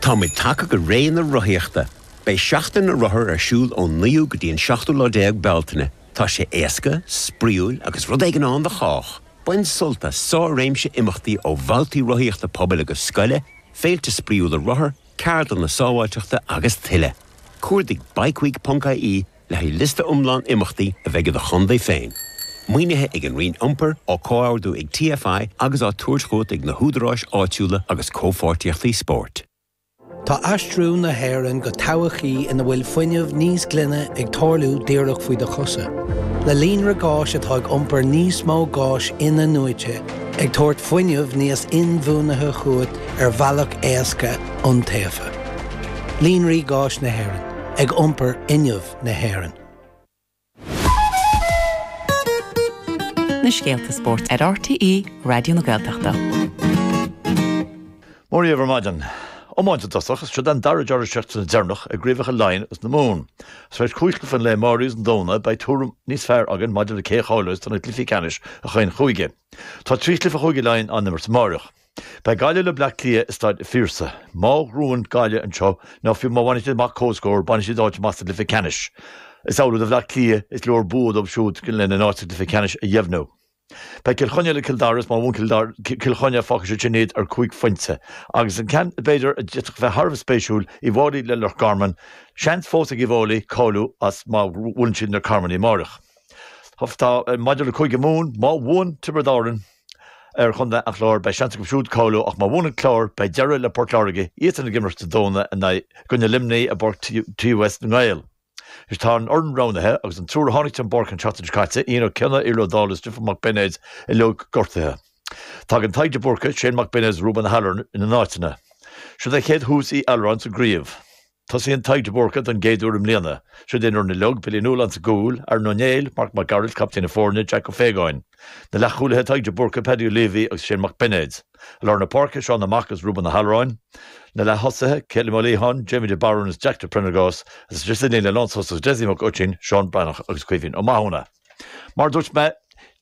Tá muid tagtha go rae na rothaíochta. Beidh Seachtain na Rothar ar siúl ón 9ú go dtí an 17ú lá de Bealtaine. Tá sé éasca, spraíúil agus rud éigin ann do chách! Bain sult as sár-réimse imeachtaí ó bhabhtaí rothaíochta pobail agus scoile, féilte spraíúla rothar, ceardlanna sábháilteachta agus tuilleadh. Cuardaigh bikeweek.ie. Le haghaidh liosta iomlán imeachtaí a bheidh i do chontae féin, maoinithe ag an Roinn Iompair, á comhordú ag TFI agus á tabhairt chugat ag na húdaráis áitiúla agus comhpháirtíochtaí spóirt, Tá aistriú na hÉireann go todhchaí ina bhfuil fuinneamh níos glaine ag tarlú díreach faoi do chosa, le líonra gáis atá ag iompar níos mó gáis in-athnuaite, ag tabhairt fuinneamh níos inbhuanaithe chugat ar bhealach éasca, iontaofa. Líonraí Gáis na hÉireann. ag iompar fhuinneamh na hÉireann. na scéalta spóirt ar RTÉ Raidió na Gaeltachta. Mora dhaoibh ar maidin. Iomáint i dtosach, is seo é an dara deireadh seachtaine deireanach i gcraobhacha Laighean agus na Mumhan. Tar éis cúig chluiche an lae amáirigh agus an Domhnaigh, beidh tuairim níos fearr againn maidir le cé a cháileos do na cluichí ceannais i chaon chúige. Tá trí chluiche i gCúige Laighean á n-imirt amáireach. Beidh Gaillimh le Bleá Cliath i Staid a' Phiarsaigh. Má bhuann Gaillimh anseo, nó fiú má bhaineann siad amach comhscór, baineann siad áit amach sa gcluiche ceannais. Is amhlaidh do Bhleá Cliath, is leor bua dóibh siúd lena n-áit sa gcluiche ceannais a dheimhniú. Beidh Cill Chainnigh le Cill Dara, is má bhuann Cill Chainnigh, fágfaidh sé sin iad ar chúig phointe. Agus an ceann, b'fhéidir, a d'fhéadfadh a bheith thar a bheith spéisiúil, Uí bhFáilí le Loch Garman. Seans fós ag Uí Bhfáilí cáiliú as má bhuaileann siad na Carmanaigh amáireach. Maidir le Cúige Mumhan, má bhuann Tiobraid Árann, ar chontae an Chláir, beidh seans acu siúd cáiliú ach má bhuann an Clár, beidh deireadh le Port Láirge, iadsan ag imirt Dé Domhnaigh i gcoinne Luimní i bPáirc TUS na nGael. Anois tá an fhoireann roghnaithe agus an triúr a tháinig den bpáirc an tseachtain seo caite, Ian Ó Cionnaith, Iarla Ó Dálaigh is Stiofán Mac Beinéid uilig gortaithe. Tagann Tadhg De Búrca, Shane Mac Beinéid is Ruben O'Halloran ina n-áiteanna. Seo é an chéad tús ag Ó hAlluráin sa gcraobh. Tosaíonn Tadhg de Búrca don gcéad uair i mbliana. Siod é an fhoireann uilig Billy Ó Nualláin sa gcúl, Aaron Ó Néill, Marc Mac Gearailt, captaen na foirne, Jack Ó Faodhagáin. Na leath-chúlaithe Tadhg de Búrca, Paddy Leavey agus Shane Mac Beinéid. I lár na páirce, Seán Mac Aodha agus Ruben Ó hAlluráin. Na leath-thosaithe, Calum Ó Liatháin, Jamie de Barún agus Jack de Priondargás. Is sa líne lántosaigh Dessie Mac Oistín, Seán Breathnach agus Caoimhín Ó Mathúna. Mar a dúirt mé,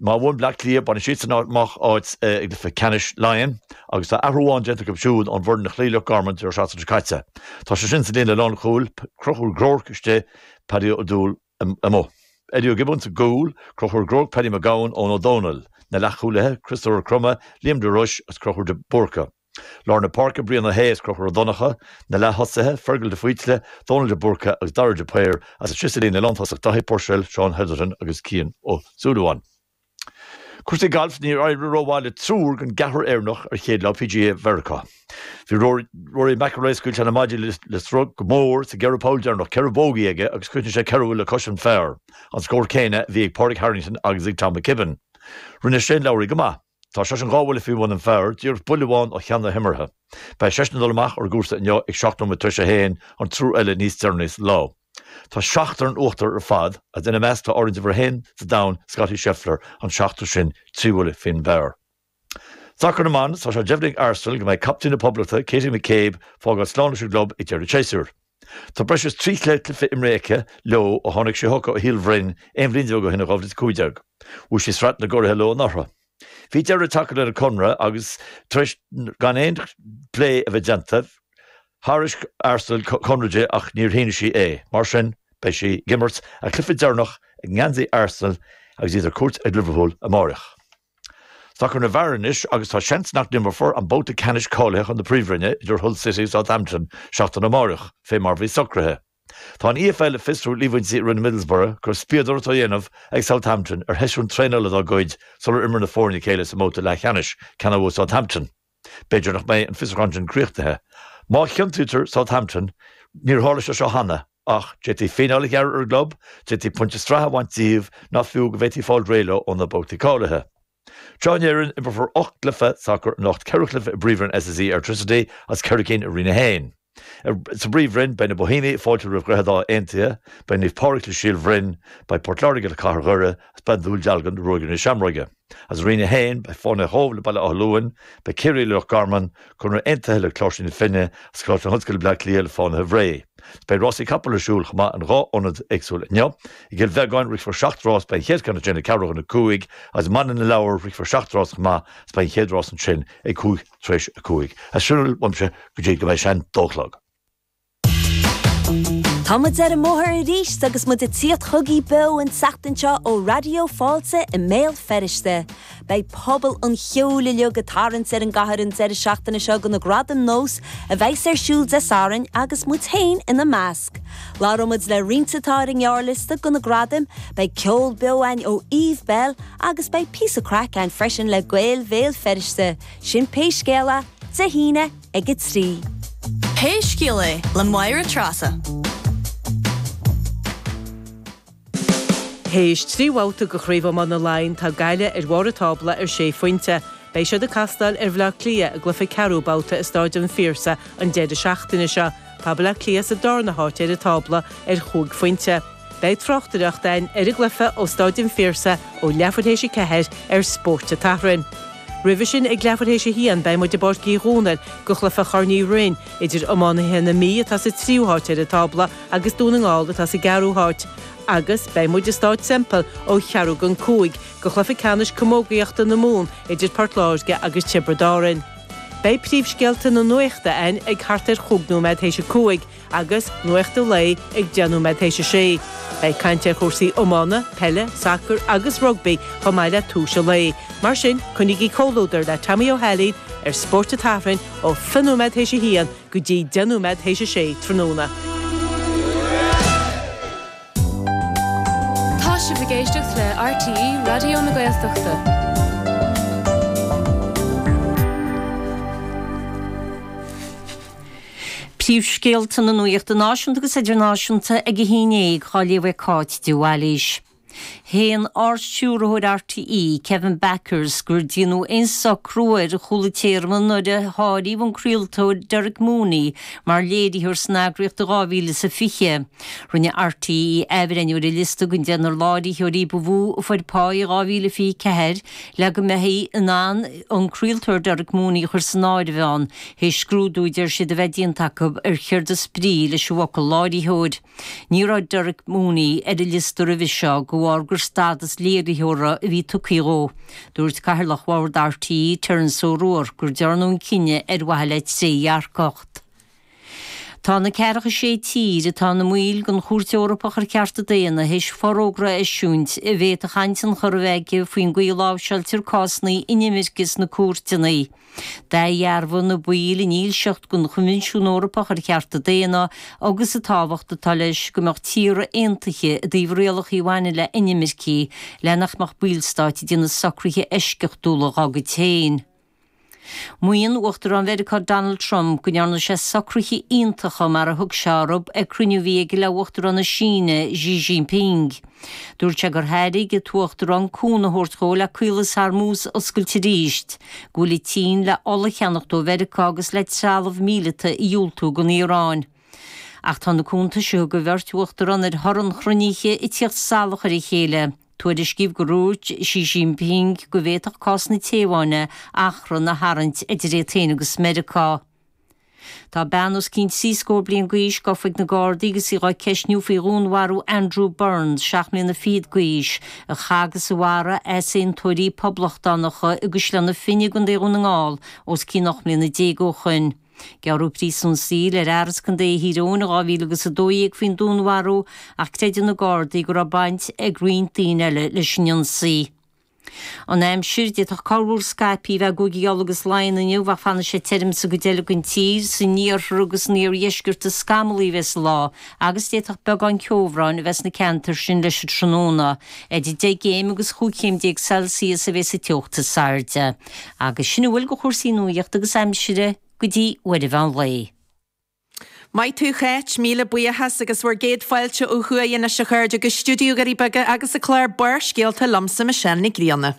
má bhuann Bleá Cliath, baineann siadsan amach áit i gcluiche ceannais Laighean agus tá athrú amháin déanta acu siúd ón bhfoireann a chloígh Loch Garman an deireadh seachtaine seo caite. Tá sé sin sa líne lánchúil, Conchúr Groarke istigh, Paddy Ó Dúill amuigh. Eddie Ó Giobúin sa gcúl, Conchúr Groarke, Paddy Mac Gabhann, Eoin Ó Domhnaill, na leathchúlaithe, Críostóir Crummey, Liam de Rois agus Conchúr de Búrca. Lár na Páirce, Brian Ó hAodha is Conchúr Ó Donncha, na leath-thosaithe, Fergal de Faoite, Dónall de Búrca agus Dara de Paor, is ansin sa líne lántosach Dáithí Purcell, Seán Hetherton agus Cian Ó Súilleabháin. Cúrsaí gailf, Níor éirigh rómhaith le triúr den gceathrar Éireannach ar chéad lá PGA Mheiriceá. Bhí Rory McIlroy scaoil sé na maidí le sruth go mór sa gceithre poll deireanach, ceithre bogey aige agus chríochnaigh sé ceithre bhuille le cois an phar, an scór céanna a bhí ag Pádraig Harrington agus ag Tom McKibbin. Rinne Shane Lowry go maith. Tá seisean dhá bhuille faoi bhun an phar, díreach buille amháin ó cheann na himeartha. Beidh seisean ag dul amach ar an gcúrsa inniu ag seacht nóiméad tar éis a haon, an triúr eile níos deireanaí sa lá. Tá seachtar in uachtar ar fad, agus ina measc tá ar ndóigh uimhir a haon sa domhan, Scottie Scheffler, an seachtar sin trí bhuille faoin bpar. Sacar na mban, tá sé deimhnithe ag Arsenal go mbeidh captaen na Poblachta, Katie McCabe, ag fágáil slán leis an gclub ag deireadh an tséasúir. Tá breis is trí chéad cluiche imeartha aici leo ó tháinig sí chucu ó Shíol Bhroin aon bhliain déag ó shin, in 2015. Bhuaigh sí Sraith na gCuradh leo anuraidh. Bhí deireadh tagtha lena conradh agus tar éis gan aon phlé a bheith déanta, thairg Arsenal conradh di ach níor shínigh sí é. Mar sin, beidh sí ag imirt a cluiche deireanach i ngeansaí Arsenal agus iad ar cuairt ag Liverpool amáireach. Sacar na bhfear anois agus tá seans nach n-imreofar an babhta ceannais cáilithe chun na Príomhroinne idir Hull City agus Southampton seachtain amáireach, fé mar a bhí socraithe. Tá an EFL ag fiosrú líomhaintí a rinne Middlesbrough go raibh spiadóireacht á dhéanamh ag Southampton ar sheisiún traenála dá gcuid sular imir na foirne a chéile sa mbabhta leathcheannais, ceann a bhuaigh Southampton. B'fhéidir nach mbeidh an fiosrúchán sin críochnaithe. Má chiontaítear Southampton, níor tharla sé seo cheana, ach d'fhéadfaí fíneáil a ghearradh ar an gclub, d'fhéadfaí pointí sraithe a bhaint díobh ná fiú go bhféadfaí fáil réidh leo ó na babhtaí cáilithe. Ar ais in Éirinn, imreofar ocht gcluiche sacair anocht, ceithre chluiche i bPríomhroinn SSE Airtricity agus ceithre cinn i Roinn 1. Sa bPríomhroinn, beidh na Boihéamaigh ag fáiltiú roimh Dhroichead Átha Aontaithe, beidh Naomh Pádraig le Síol Bhroin, beidh Port Láirge le Cathair Dhoire, agus beidh Dún Dealgan le Ruagairí na Seamróige. Is i Roinn 1, beidh Fánaithe Chóibh le Baile Átha Luain, beidh Ciarraí le Loch Garman, Conradh Aontaithe le Cláirsigh na Finne, agus Coláiste na hOllscoile Bleá Cliath le Fánaithe Bhré. Beidh rásaí capall ar siúl chomh maith in dhá ionad éagsúla inniu. I gCill Bheagáin, rithfear seacht rás, beidh an chéad cheann ansin ag ceathrú chun a cúig, agus i mBaile na Lobhar, rithfear seacht rás chomh maith, agus beidh an chéad rás ansin ag Cúig tar éis a cúig. Is sin a bhfuil uaimse go dtí go mbeidh sé an dó a chlog. Tá muid ar an mbóthar arís agus muid ag tíocht chugaibh beo an tseachtain seo ó Raidió Fáilte i mBéal Feirste. Beidh pobal an cheoil uilig ag tarraingt ar an gcathair an deireadh seachtaine seo do na Gradaim NÓS a bheas ar siúl Dé Sathairn agus muid féin ina measc. Labhróimid le roinnt atá ar an ngearrliosta do na gradaim, beidh ceol beo ann ó Eve Belle agus beidh píosa craic ann freisin le Gaeil Bhéal Feirste, sin pé scéal é, Dé hAoine ag a trí. Pé Scéal É le Máire Treasa. Théis trí bhabhta de Chraobh Iomána Laighean, tá Gaillimh ar bharr an tábla ar sé phointe. Beidh siad ag castáil ar Bhleá Cliath i gcluiche ceathrú babhta i Stáid an Phiarsaigh an deireadh seachtaine seo. Tá Bleá Cliath sa darna háit ar an tábla ar chúig phointe. Beidh tráchtaireacht a'ainn ar an gcluiche ó Stáid an Phiarsaigh ó leathuair théis a ceathair ar Spórt an tSathairn. Roimhe sin ag leathuair théis a haon beidh muid i bPáirc Uí Dhomhnaill go chluiche Chorn Uí Rinn idir iománaithe na Mí atá sa tríú háit ar an tábla agus Dún na nGall atá sa gceathrú háit, agus beidh muid i Stáid Semple ó cheathrú go cúig go chluiche ceannais camógaíochta na Mumhan idir Port Láirge agus Tiobraid Árann. Beidh príomhscéalta na nuachta a'ainn ag thart ar chúig nóiméad théis a cúig agus Nuacht a' Lae ag deich nóiméad théis a sé. Beidh caint ar chúrsaí iomána, peile, sacar agus rugbaí chomh maith le torthaí a' lae. Mar sin, coinnígí comhluadar le Tommy Ó hAilín ar Spórt a' tSathairn ó thrí nóiméad théis a haon go dtí deich nóiméad théis a sé tráthnóna. Tá sibh ag éisteacht le RTÉ Raidió na Gaeltachta. Príomhscéalta na nuachta náisiúnta agus idirnáisiúnta ag a haon déag á léamh ag Cáit de Bhailís. Shéan Ard-Stiúrthóir RTÉ, Kevin Bakhurst, gur dearnadh aon socrú ar chúla téarmaí nuair a áiríodh an craoltóir Derek Mooney mar léiritheoir san eagraíocht in 2020. Rinne RTÉ athbhreithniú ar a liosta den deichniúr láithreoirí ba mhó a fuair pá in 2024 le go mbeifí in ann an craoltóir Derek Mooney a chur san áireamh ann, th'éis scrúdú a deir siad a bheith déanta acu ar céard is brí leis an bhfocal 'láithreoir'. Ní raibh Derek Mooney ar an liosta roimhe seo de bharr gur stádas léiritheora a bhí tugtha dhó. Dúirt Cathaoirleach Bhord RTÉ, Terence O'Rourke, gur dearnadh an cinneadh ar mhaithe le trédhearcacht. Tá na ceathracha sé tír atá ina mbaill den Chúirt Eorpach ar Chearta Daonna théis forógra a eisiúint a bhféadfadh an-tionchar a bheith aige faoin gcaoi a láimhseáiltear cásanna inimirce sna cúirteanna. D'athdhearbhaigh na baill a ndílseacht don Choinbhinsiún Eorpach ar Chearta Daonna agus an tábhacht atá leis go mbeadh tíortha aontaithe i dtaobh rialacha a bhaineann le hinimircigh, le nach mbeadh ballstáit ag déanamh socruithe eisceachtúla dá gcuid féin. Maíonn Uachtarán Mheiriceá Donald Trump go ndearna sé socruithe iontacha, mar a thug sé orthu, ag cruinniú a bhí aige le hUachtarán na Síne, Xi Jinping. Dúirt sé gur thairg an tUachtarán cúnamh a thabhairt dhó le Caolas Hormuz a oscailt arís, go bhfuil an tSín le ola a cheannacht ó Mheiriceá agus le trealamh míleata a dhiúltú don Iaráin. Ach tá na cúntais a thug an bheirt Uachtarán ar thoradh an chruinnithe ag tíocht salach ar a chéile. Tuairiscíodh gur dhúirt Xi Jinping go bhféadfadh cás na Téaváine achrann a tharraingt idir é féin agus Meiriceá. Tá bean os cionn trí scór bliain d'aois gofa ag na Gardaí agus í á ceistniú faoi dhúnmharú Andrew Burns, seacht mbliana fichead d'aois, a chaith agus a mharaigh easaontóirí poblachtánacha i gCaisleán Finn i gContae Dhún na nGall os cionn ocht mbliana déag ó shoin. Gearradh príosún saoil ar fhear as Contae Thír Eoghain in dhá mhíle agus a dó dhéag faoin dúnmharú ach creideann na Gardaí go raibh baint ag roinnt daoine eile leis an ionsaí. An aimsir, d'fhéadfadh corrmhúr scaipthe a bheith i gCúigí Uladh agus Laighean inniu, ach fanfaidh sé tirim sa gcuid eile den tír, san iarthar agus san iardheisceart is scamallaí a bheidh an lá, agus d'fhéadfadh beagán ceobhráin a bheith sna ceantair sin leis an tráthnóna. Idir deich gcéim agus chúig chéim déag Celsius a bheidh sa teocht is airde. Agus sin a bhfuil de chúrsaí nuachta agus aimsire go dtí uair an mheán lae. Maith thú Cháit, míle buíochas, agus bhur gcéad fáilte ó thuaidh anois a chairde, go Stiúideo Dhoirí Beaga agus an clár Barrscéalta liomsa Michelle Nic Grianna.